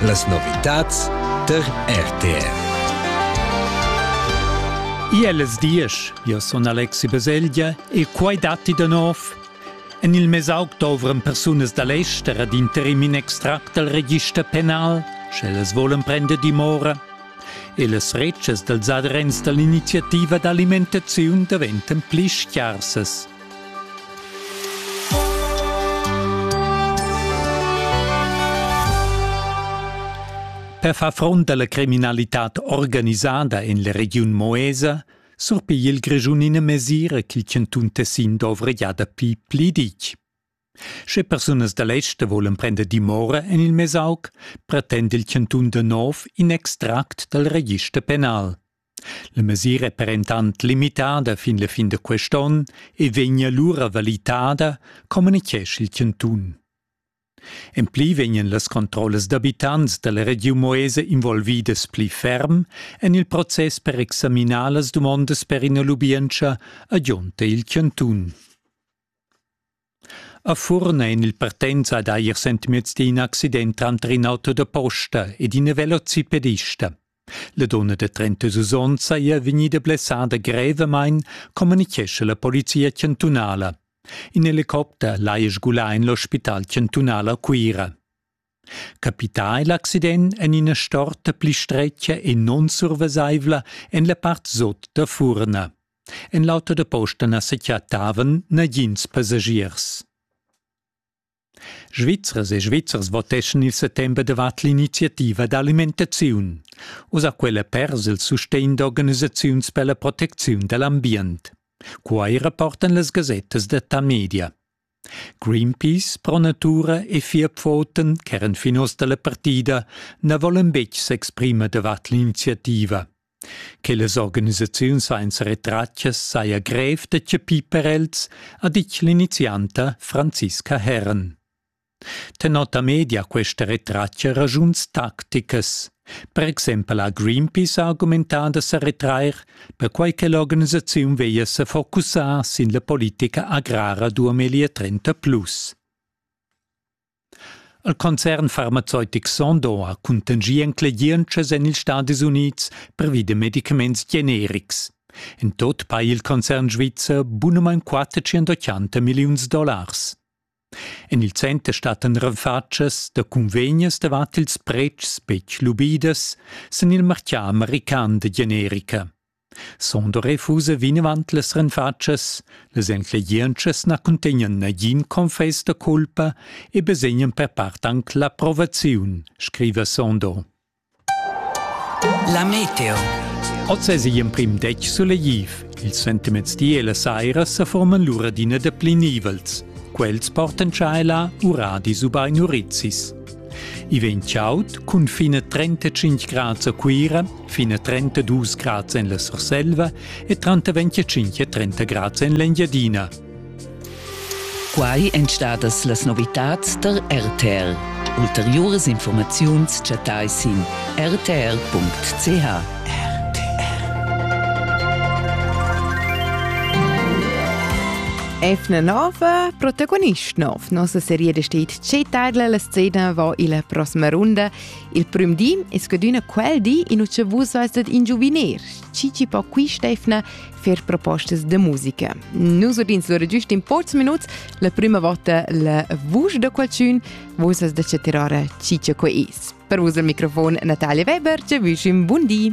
Las novitads tar RTR. Iellas diesch, io sun Alexi Baselgia e quai datti da nov. En il mesauc dovran persunas da l'ester ad interim in extract dal register penal, sch'ellas volan prender dimora. E las retschas dals adrents da l'iniziativa d'alimentaziun daventan pli scharsas. Per far front alla criminalitad organisada en la regiun Moesa surpigl il Grischun ina mesira ch'il chantun Tessin dovra gia dapi pli ditg. Sche persunas da l'ester volan prender dimora en il Mesauc, pretend il chantun da nov in extract dal register penal. La mesira è per entant limitada fin la fin da quest onn e vegn alura valitada, communitgescha il chantun. En pli vegnan las controllas d'abitants da la regiun Moesa involvidas pli ferm en il process per examinar las dumondas per ina lubientscha, agionta il chantun. A Furn ein il partenza ad eir sentimients d'in accident tranter in auto da posta ed ina velocipedista. La donna da 36 onns saja vegnida blessada grevamain, communichescha la polizia chantunala. In helicopter l'haja sgulà en l'ospital chantunal a Cuira. Capità è l'accident en ina storta pli stretga e non survesaivla en la part sot da Furna. En l'auto da posta na sa chattavan nagins passagiers. Svizzers e Svizzers voteschan il settember davart l'iniziativa d'alimentaziun. Usa quella pers il sustegn d'organisaziuns per la protecziun da l'ambient. Quai rapportan las gasettas da Tamedia. Greenpeace, Pro Natura e vier Pfoten, ch'eran fin oz da la partida, na volan betg s'exprimer davart l'iniziativa. Che las organisaziuns ein seretratgas saja grev da chapir per els, ha ditg l'inizianta Franziska Herren. Tenor da media questa retratga raschuns tacticas. Per exempel ha Greenpeace argumentà da sa retrair, perquai che l'organisaziun veglia sa focussar sin la politica agrara 2030 plus. Il concern farmazeutic Sondo ha cuntanschì enclegientschas en ils Stadis Unids pervi da medicaments generics. En tot pa il concern svizzer bunamain 480 milliuns dollars. En il center stattan renfatschas da cunvegnas davart ils pretschs betg lubidas sin il martgà american da generica. Sonder refusa vinavant las renfatschas, las enclegientschas na cuntegnan nagin confess da culpa e basegnan per part anc l'approvaziun, scriva Sonder. La meteo. Oz es igl emprim detg sulegliv. Ils sentiments di e la saira sa forman lura d'ina da pli nivels. Quels portan tschaila uradis ubain urizzis. I vegn chaud cun fine 35 grads a Cuira fin a 32 grads en la Surselva e tranter 25 e 30 grads en l'Engiadina. Quai èn stadas las novitads tar RTL. Ulteriuras informaziuns chattai sin rtl.ch. Efna Nova, protagonist nov. Nossa serie besteht c'è tarla la scena va illa prossima runda Il prüm di es scadüna quel di in ucha vus seist dad ingiuviner, chi chi po qui Stefna fer propostas de musica. Nus udins lura giust in porzs minuts la prüma vota la vusch da qualchün, vus as da tirare chi chi que is. Per vus al microfon Natalia Weber, ci vüsch un bun di!